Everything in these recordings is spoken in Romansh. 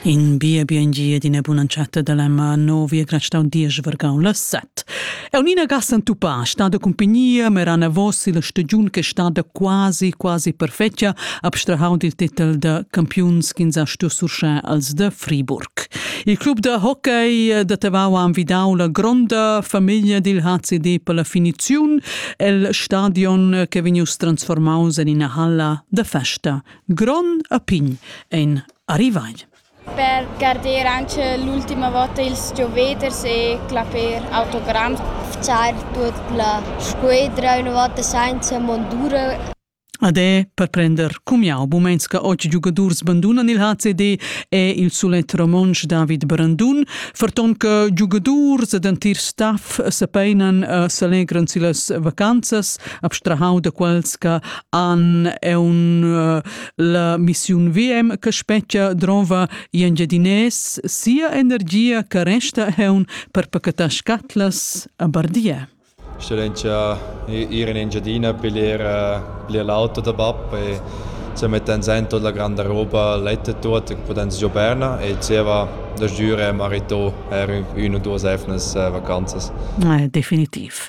In bia biengia d'ina bun'entschatta da lemma novi e grastau diesch vargau las set. Eunina Gassen Tupà sta da cumpagnia, merana vos la stagiun che sta da quasi, quasi perfetga, abstrahau dil titel da campiuns ch'ins ha stu surschar als da Friburg. Il club da hockey da Tavau ha envidau la gronda famiglia dil HCD per la finiziun el stadion che vegnius transformaus en ina halla da festa Gron a pign ein arrivai. Per garder anche l'ultima volta ils gioveders e clapper autogramm. Far tut la squadra una volta senza mondura. Ade per prender cumiau bumenska och giugadurs bandunan il HCD e il sulet romontsch David Brandun, ferton che giugadurs ed antir staff se peinan e selegran si las vacanzas, abstrahau da quels che an è un uh, la missiun VM che spetgia drova i engiadines sia energia che resta heun per pacatar scatlas a Bardia. Excellència ir in Engiadina piglier piglier l'auto da bab e se metten sen tut la grande roba lette tot e poten si Berna e ceva da giure marito er un o due sefnes vacanzas. Definitiv.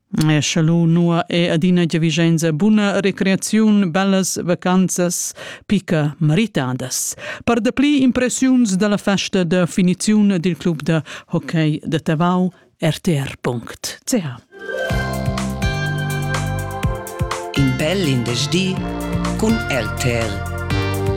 Scha lu nua è adina giavischenza buna recreaziun, bellas vacanzas, picca maritadas. Per dapli impressiuns dalla festa da finiziun dil club da hockey da Tavau rtr.ch In bel in di cun RTL.